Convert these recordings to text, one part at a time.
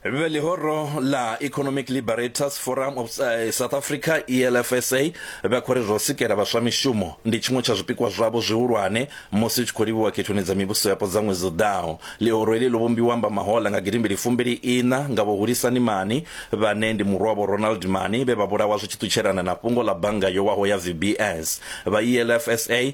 Vhe ḽihoro ḽa Economic Liberators Forum of eh, South Africa ELFSA vha khou ri zwa u sikela vhaswa mishumo ndi tshiṅwe tsha zwipikwa zwavho zwihulwane musi hu tshi khou livhiwa khethoni dza mivhuso yapo dza ṅwedzi u ḓaho. Ḽihoro heḽi ḽo vhumbiwa amba mahoḽa nga gidimbili fumbili iṋa nga vho Hulisani Mani vhane ndi murwa vho Ronald Mani vhe vha vhulawa zwi tshi ṱutshelana na fhungo ḽa bannga yo waho ya VBS. Vha ELFSA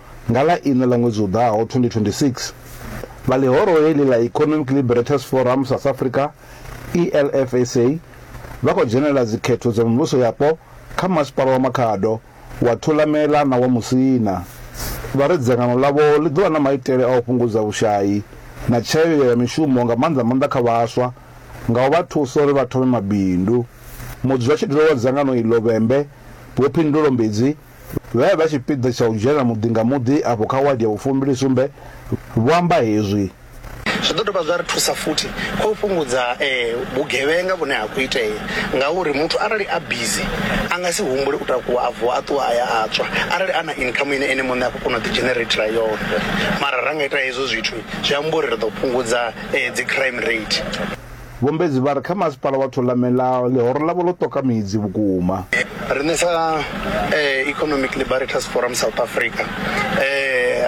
Nga ḽa iṋa ḽa ṅwedzi u ḓaho 2026, vha ḽihoro heḽi ḽa Economic Liberators Forum South Africa, ELFSA, vha khou dzhenela dzikhetho dza mivhuso yapo kha masipala wa Makhado, wa Thulamela na wa Musina. Vha ri dzangano ḽavho ḽi ḓo vha na maitele a u fhungudza vhushai na tshayeo ya mishumo nga maanḓa maanḓa kha vhaswa nga u vha thusa uri vha thome mabindu. Mudzulatshidulo wa dzangano iḽo, Vhembe, Vho Phindulo Mbidzi, vhe vha tshipiḓa tsha u dzhena muḓi nga muḓi afho kha wadi ya vhufumbilisumbe vho amba hezwi. Zwi ḓo dovha zwa ri thusa futhi kha u fhungudza vhugevhenga vhune ha khou itea ngauri muthu arali a bizi a nga si humbule u takuwa a vuwa a ṱuwa a ya a tswa arali a na income ine ene muṋe a khou kona u ḓidzhenereithela yone. Mara ra nga ita hezwo zwithu zwi amba uri ri ḓo fhungudza dzi crime rate. Vho Mbedzi vha ri kha masipala wa Thulamela ḽihoro ḽavho ḽo ṱoka midzi vhukuma. Riṋe sa Economic Liberators Forum South Africa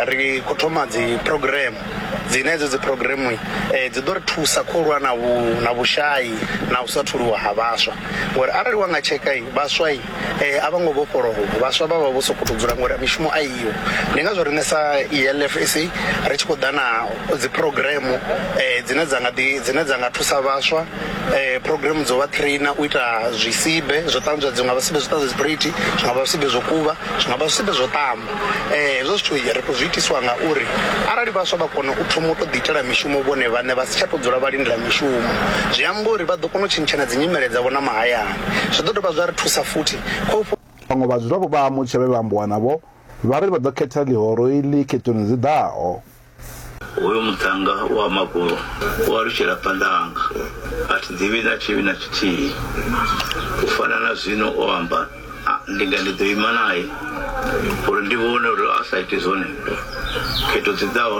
ri khou thoma dzi program dzine hedzo dzi program dzi ḓo ri thusa kho lwa na vhu na vhushai na u sa tholiwa ha vhaswa ngori arali wa nga tsheka vhaswa eh a vho ngo vhofholowa vhaswa vha vha vho sokou tou dzula ngori mishumo a iyo ndi ngazwo riṋe sa elf sa ri tshi khou ḓa na dzi program um dzine dza nga ḓi dzine dza nga thusa vhaswa um program dzo vha trainer u ita zwisibe zwo ṱanzwa dzi nga vha zwisibe zwo ṱanzwa dziphurithi zwi nga vha zwisibe zwo kuvha zwi nga vha zwisibe zwo ṱamba um hezwo zwithu ri khou zwi itiswa ngauri arali vhaswa vha kona u thoma u tou ḓi itela mishumo vhone vhaṋe vha si tsha tou dzula vha lindela mishumo zwi amba uri vha ḓo kona u tshintshana dzi nyimele dzavho na mahayani Zwi ḓo dovha zwa ri thusa futhi kha u. Vhaṅwe vhadzulapo vha Mutshe vhe vha ambiwa navho vha ri vha ḓo khetha ḽihoro iḽi khethoni dzi ḓaho. Hoyu muṱhannga wa magulu u alutshela phanḓa hanga, a thi ḓivhi na tshivhi na tshithihi. U fana na zwino o amba, ndi nga ndi ḓo ima nae uri ndi vhone uri a sa ite zwone khetho dzi ḓaho.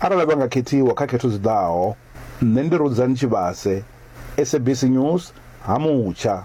arali vha nga khethiwa kha khetho dzi ḓaho. Nṋe ndi Rudzani Tshivhase, SABC News, Ha-Mutsha.